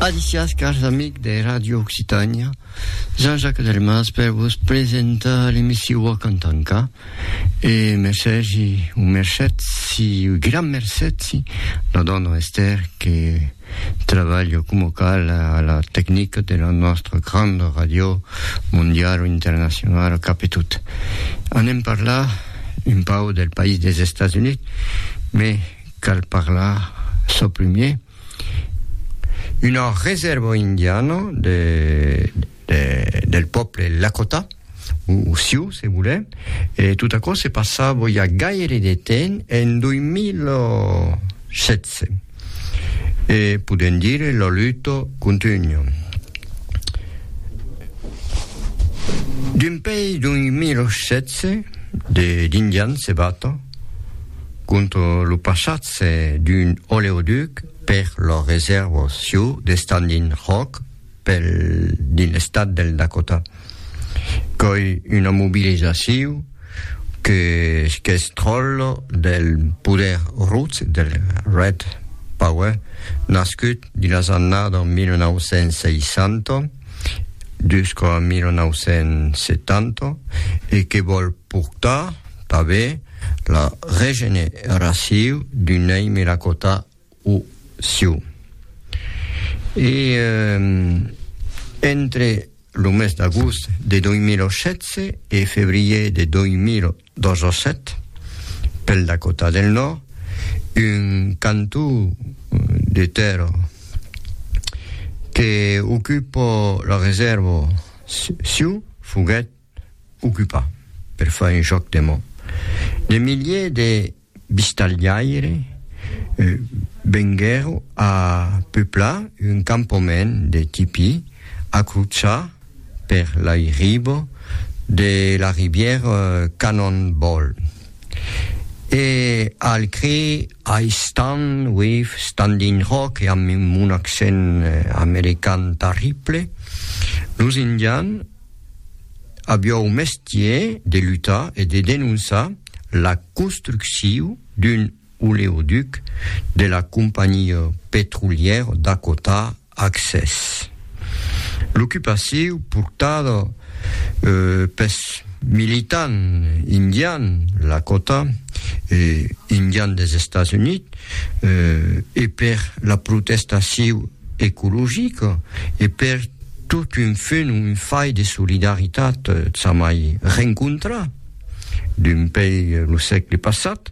Adicias, cars amics de Radio Occitània, Jean-Jacques Delmas per vos presentar l'emissiu a Cantanca. E mercès i un mercet, si, un gran mercet, si, la dona Esther que treballa com cal a la tecnica de la nostra grande radio mondial o internacional cap e tot. Anem parlar un pau del país des Estats Units, mais cal parlar çò primier, una reserva indiana de, de, del pòble Lakota, o, o Sioux, se volem, e tot aquò se passava ja gaire de temps en 2016. E podem dire la luta continua. D'un pei 2016 de, d'indians se bata, Contra lo passatge d'un oleoduc per la resèrva Sioux de Standing Rock pel dins l'estat del Dakota. Qu'ei una mobilizacion que qu'es tròlla del poder rus del Red Power nascut dins las annada 1960 jusqu'a 1970 e que vòl portar tanben la regeneraciu d'un èime la cota o siu. E eh, entre lo mes d'agost de 2016 e febrier de 2017, pel Dakota del Nòrd, un cantó de tèrra que ocupa la resèrva siu foguèt ocupar, per far un jòc de mot, de miliers de vistalhaires venguèron a peuplar un campament de tipí a crotzar per l'airibo de la rivièra Cannonball e al crir I stand with Standing Rock e amb un accent american tarrible, los Indians, aviou mestier de lutar e de denonçar la construcciu d'un oleoduc de la companhiá petrolièr Dakota Access. L'ocupaciu portada pes militant indian Lakota e indian des Estats Units e per la protestaciu ecologica e per totun fen un fai de solidaritat tzamai rencontra dempei lo sègle passat,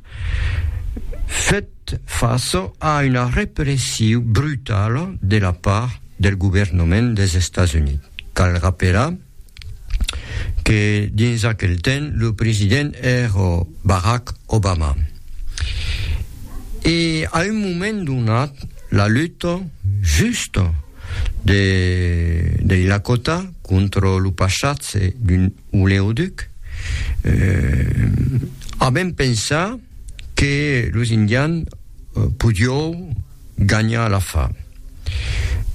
fèt fàça a una repressiu brutala de la part del governament des Estats Units. Cal rapelar. que dins aquel temps lo president èra Barack Obama. E a un moment donat, la luta justa de, dei Lakota contra lo passatge d'un oleoduc, eh, a ben pensar que los Indians podiou ganha la fa.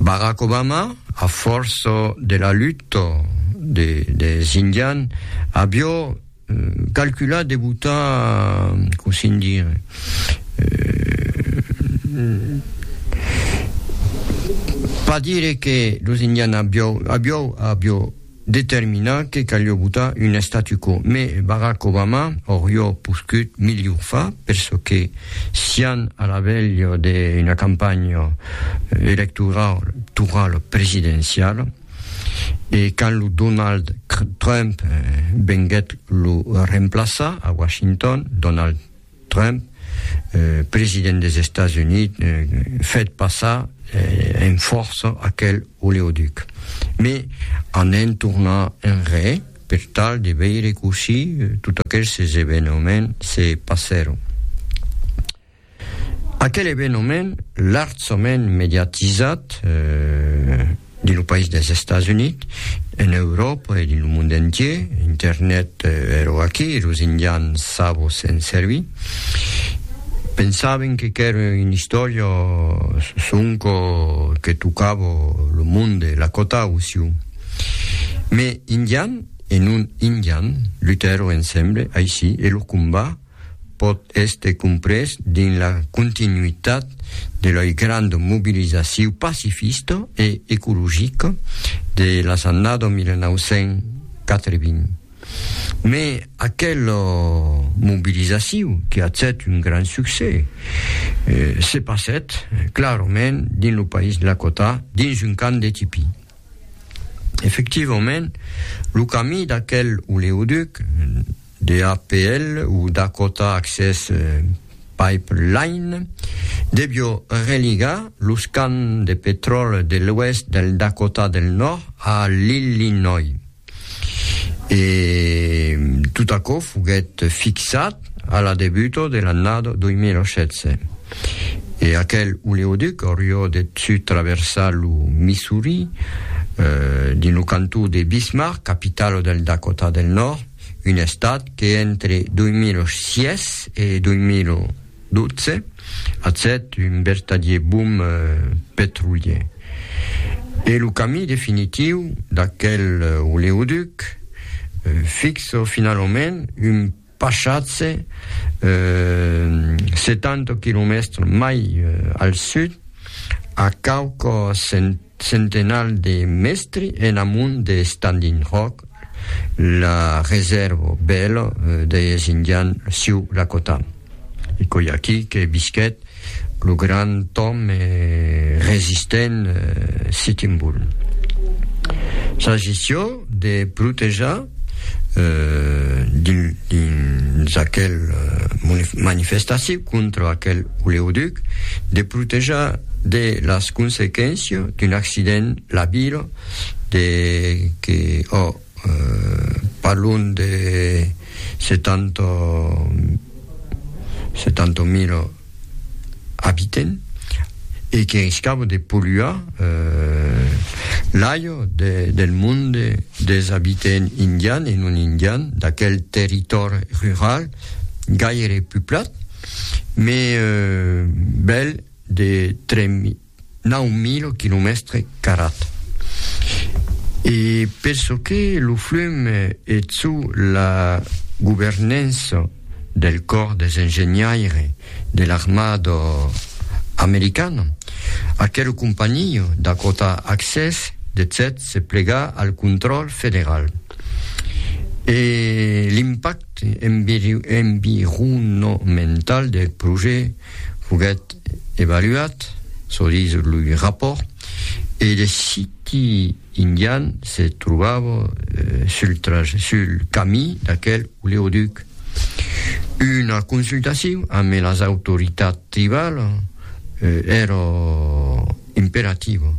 Barack Obama, a fòrça de la luta de, des indian, avió calculat de botar, com se'n dir, pas dire que los indian avió, avió, avió, determinar que calió botar un statu quo, me Barack Obama aurió poscut milhor fa, per çò que sián a la velha de una campanha electoral toral presidenciala, e quand lo Donald Trump venguèt lo remplaçar a Washington, Donald. Trump, president des Estats Units, fèt passar en fòrça aquel oleoduc, me an en tornar enrè per tal de veire cossí tot aquelses evenements se passèron. Aquel evenement larjament mediatizat, dins lo país dels Estats Units, en Euròpa e dins lo mond entier, internet ero aquí, los indians sabo se'n servir, pensaven que qu'èra una istòria sonco que tocava lo mond de Lakota o Sioux. Mes indians e non indians lutèron ensemble aicí e lo combat pòt èster comprés dins la continuitat de lei granda mobilizaciu pacifista e ecologica de las annada 1980. Mè aquela mobilizaciu, que hachèt un grand succès, se passèt clarament dins lo país lakota dins un camp de tipí. Efectivament, lo camí d'aquel oleoduc, DAPL o Dakota Access Pipeline devió religar los camps de petròl de l'oèst del Dakota del Nòrd a l'Illinois. E tot aquò foguèt fixat a la debuta de l'annada 2016. E aquel oleoduc aurió de sud traversar lo Missouri dins lo cantó de Bismarck, capitala del Dakota del Nòrd. Un estat que entre 2006 e 2012 atcèt un vertadier boom petrolier. E lo camí definitiu d'aquel oleoduc fixo finalament un passatge 70 quilomètres mai al sud a quauques Centenal de mestri en amont de Standing Rock, la resèrva bèla deis Indian siu Lakota. E coi aquí que visquèt lo grand òme e resistent Sitting Bull. Sa gestion de protejar dins aquel manifestacion contra aquel oleoduc, de protejar de las consequéncias d'un accident la vila de que ò parlon de 70 70 mila abiten e que riscava de polluar l'aire del monde des abitents indians e non indians d'aquel territòri rural gaire puplat, mais bèl de 3.000 Nau mil quilomèstre carat. E per çò que lo flum e çò la governança del còr des engenhaires de l'armada americana, aquela companhia Dakota Access decèt se plegar al contròl federal. E l'impacte environomental del projècte foguèt evaluat, çò dis lo rapòrt, e de siti indian se trobava sul trajet, sul camí d'aquel oleoduc. Una consultacion amb las autoritats tribalas èra imperativa.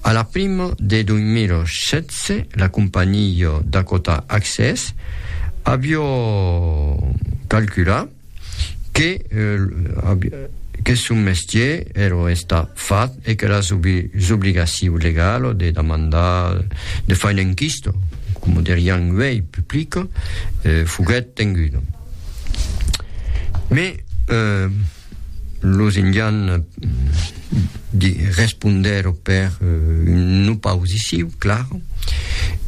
A la prima de 2016, la companhiá Dakota Access aviá calculat, que que son mestier ero estar fat e que la s'obligaciu legalo de damandar de far un enquisto, coma derián uei, publico, foguèt tenguda. Mes los indians de respondèr per un no pausiciu, clar,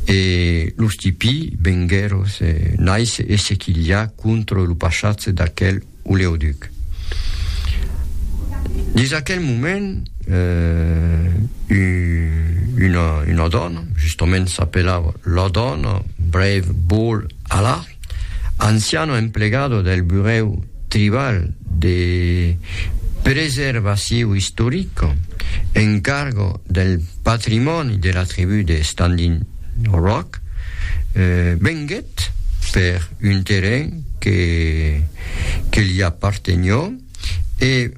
e los tipí venguèron se naise e se quilhar contra lo passatge d'aquel oleoduc. Dins aquel moment, una dòna, justament s'apelava la dòna Brave Ball Allard, Anciano emplegado del Burèu Tribal de Preservaciu Istoric en cargo del patrimòni de la tribu de Standing Rock venguèt per un terren que que li apartenió e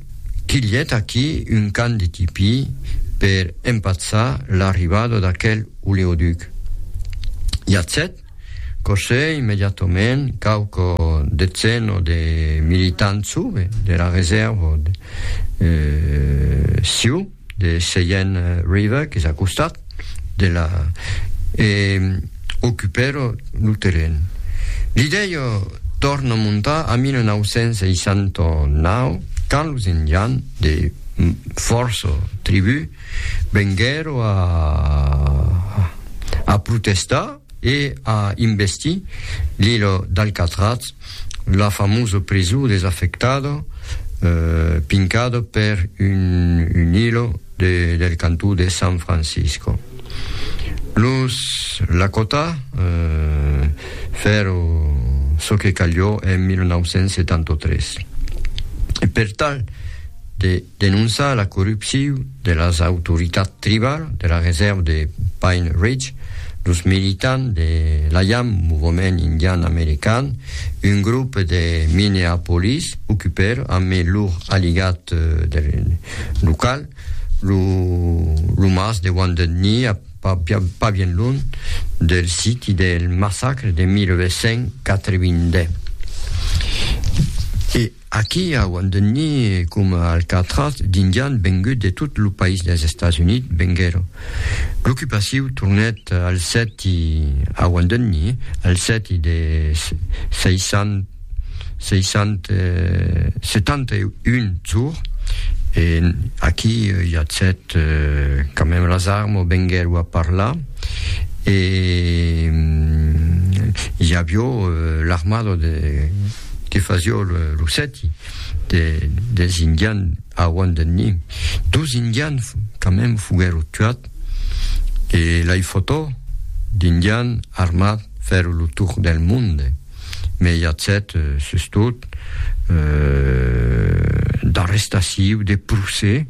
quilhèt aquí un can de tipí per empatzar l'arribada d'aquel oleoduc. Iatz 7. Cossè immediatament quauqu detzen o de militants sube dera resèrva de Sioux de Cheyenne River, qu'es a costat de la e ocupèro lo terren. Li dèio tòrna montar a 1969 quand los Indians de fòrça tribús Venguèro a a protestar e a investir l'Ilo d'Alcatraz, la famosa prisó desafectada pincada per un un ilo de del cantó de San Francisco. Los Lakota fèro çò que calió en 1973. E per tal de denonçar la corrupciu de las autoritats tribal de la resèrva de Pine Ridge, los militants de l'AIAM, Movement Indian American, un grop de Minneapolis, ocupèr amé lor aligat local, lo lo mas de Wounded Knee a pas bien lunh del siti del massacre de 1882. Aquí auan de nir coma Alcatraz d'indians venguts de tot lo país dels Estats Units venguèron. L'ocupaciu tornèt al sèti auan de nir al sèti de 671 jours e aquí i a sèt quand même las armes venguèron a parlar e i avió l'armada de que fasió lo sèti de, des indian auan de ni. Dos indian quand même foguèro tuat e lai fotò d'indian armat fèro lo tour del monde, me i a cet sustot d'arrestaciu, de procès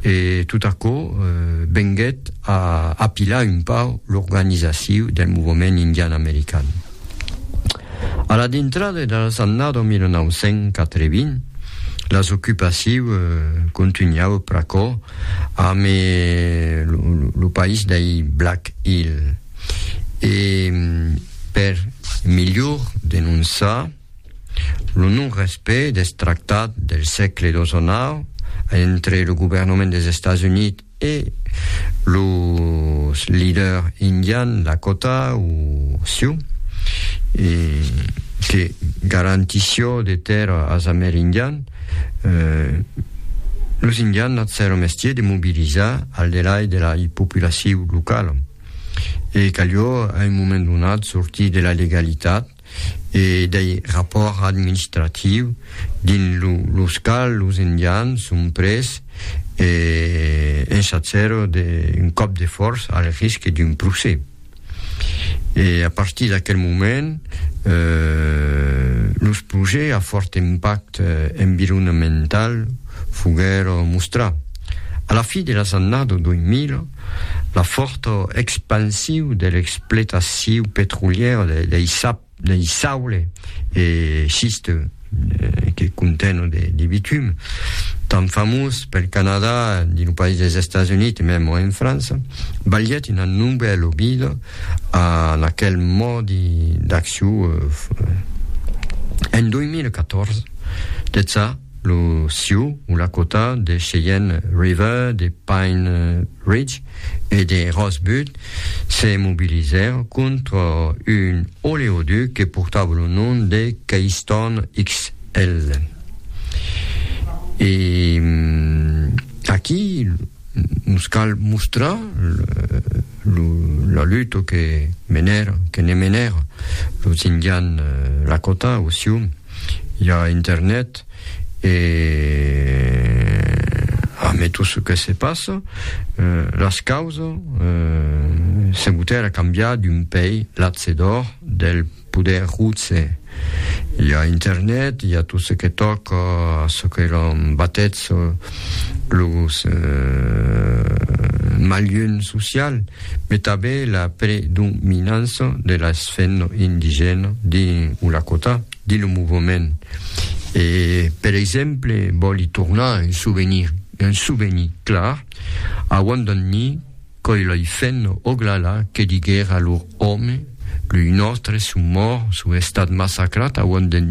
e tot aquò venguèt a apilar un pauc l'organizaciu del movement indian american. A la dintrada de las annada 1980, las ocupaciu contunhau pr'aquò amb lo país dei Black Hill e per milhor denonçar lo non-respect deth tractat del sègle xix entre lo governament des Estats Units E los leader indian Lakota o Sioux que garantissió de tèrra as amerindian, los indian n'at sèra mestier de mobilizar al delai de la populaciu locala e calió a un moment donat sortir de la legalitat, e dei rapòrts administratius dins los quals los Indians son pres e ensatjèron d'un còp de fòrça al risque d'un procès. E a partir d'aquel moment, los projècts a fòrt impacte environamental foguèron mostrats. A la fin de las annadas 2000, la fòrta expansiu de l'expletaciu petrolièra dei sap, dei saule e schiste que contènon de bitum, tan famós pel Canadà, dins lo país des Estats Units e mèm en França, balhèt una novèla obida a aquel mòdi d'acciu en 2014. De ça, lo Sioux o Lakota de Cheyenne River, de Pine Ridge e de Rose Butte se mobilizèron contra un oleoduc que portava lo nom de Keystone XL. E aquí nos cal mostrar lo, la luta que menèron, que ne menèron los Indians Lakota o Sioux. i a internet e amé tot ce que se passa las causa se boter a cambiar d'un pei latse d'or del poder rutse i a internet i a tot ce que tòca ce que l'on batètz los malhun social Mai tanben la predominança de las femnas indigènas dins o Lakota, dins lo movement. E, per exemple, vòli tornar un souvenir, un souvenir clar, a Wandangni, coi lei femnas Oglala que diguèra lor òme, Lui nòstre son mòrt, son estat massacrat a Wandangni,